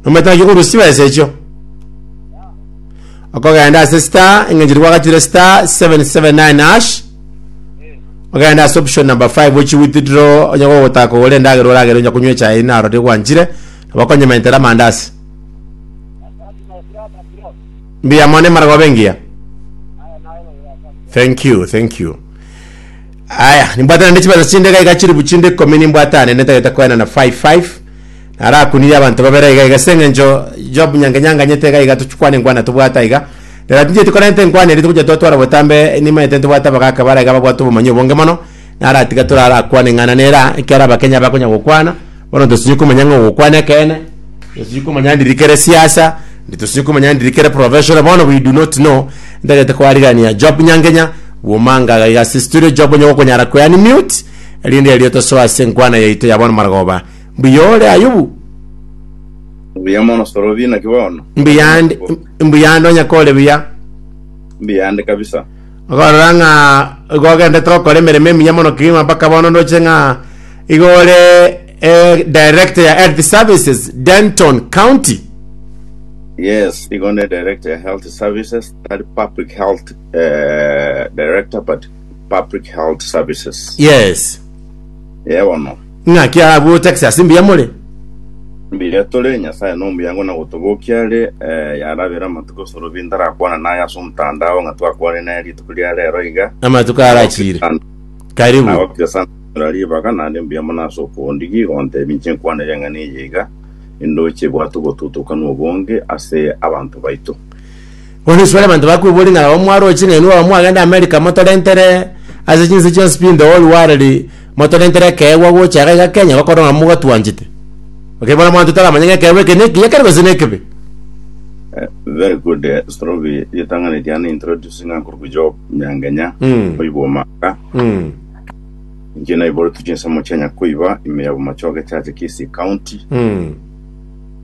Nomanyete naki okorusia chibesa echio. Okogenda ase star eng'encho rigwagatire star 779 hash ogenda ase option number 5 ochi withdraw onye gogotaka kogora endagera oragere onye konywa echae naro rigwanchire nabo okonyementera amandasi mbuya mono emara goba engiya thank you thank you aya nimbwatana nechibesa chinde gaiga chiribu chinde ikomi nimbwatane netagete koenana 55 Narakunirie abanto babere aiga aiga ase engencho Job nyange nyanganyete iga iga tochikwane nkwana tobwate aiga. Naratincheti korenta enkwana eria togocha twatwara botambe nimanyete ntobwate abagaka bare aiga babwate obomanyi obonge mono. Naratiga torarakwane ng'ana nera ekiara abakenya bakonya gokwana bono tosinye komanya ng'a ogokwana ekeene tosinye komanya ndiri kere siasa tosinye komanya ndiri kere professional bono we do not know ntagete koarigania Job nyangenya bwomanga iga iga ase studio Job onye gokonyara kweani mute erinde erio tosoa ase enkwana yaito ya bono marogoba Mbuya ore Ayubu. Mbuya mono Sorobi, naki bono. Mbuya ande, mbuya ande onye kore buya. Mbuya ande kabisa. Okorora ng'a igo ogendete gokora emeremo emiya mono kegima mpaka bono ndoche ng'a igo ore eh, director ya health services Denton County. Yes, igo ne director ya health services, tari public health eh, director but public health services. Yes. Ye bono. Naki agocha gose ase mbuya more. Mbuya tore, Nyasae nomuyango na gotobokia are, ee, yarabera amatuko Sorobi ntarakwana naye ase omotandao ng'a twakwane naye rituko ria rero iga, Amatuko arachire. nagokire sana, Karibu. nagokire sana konyora ribaga, nare mbuya mono ase okoondigia igo ontebie inche nkwanere eng'ana eye iga, nindoche bwate obotutukanwa obonge ase abanto baito. Bono isiko abanto bakwebora ing'ana barabwo mwaroche ching'eni barabwo mwagenda America motorentere ase chinse chionsi pi in the whole world motorentere ekeegwa gocha iga iga Kenya gokorwa ng'a mogatwanchete. Okay bono abanto taramanye ng'a ekeegwa eke neki ekero gose nekebe. Eh, very good eh, Strobi ritang'ani riane introducing Uncle Kujob Nyangenya Mm. oibwa omaka Mm. inche naiboretwe chinsemo chia Nyakoiba ime ya Bomachoge Church Kisii County Mm.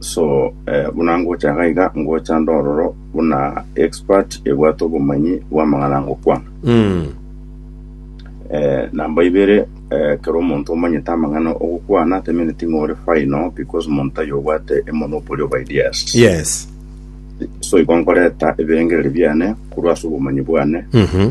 So eh, buna ngocha iga iga ngocha ndororo buna expert ebwate obomanyi bw'amang'ana ngokwana Mm. eh, namba ibere eh, kero omonto omanyete amang'ana ogokwana temeneti ng'ore final because omonto ayo obwate emonopoly of ideas Yes. so igo nkoreta ebirengereri biane korwa ase obomanyi bwane Mhm.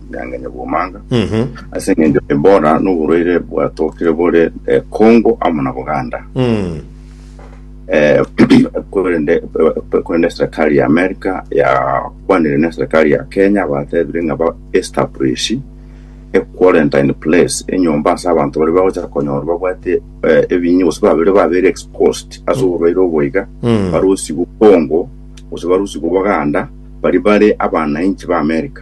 Nyange Nyabwomanga, Mhm. ase engencho Ebola noborwaire bwatokire bore eh, Congo amo na Buganda. Mm. Eh, korende eh, korende serikali ya America yakwanire ne serikali ya Kenya batebire ng'a ba establish a quarantine place enyomba ase abanto bari bagocha konyora babwate eh, ebinya gose babere babere exposed ase oborwaire oboiga Mm. barusigwe Congo gose barusigwe Buganda bari bare abananchi ba America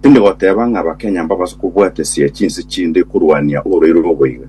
Tindi goteba ng'a Abakenya mbabase kobwatesia chinse chinde korwania orwaire oboigo.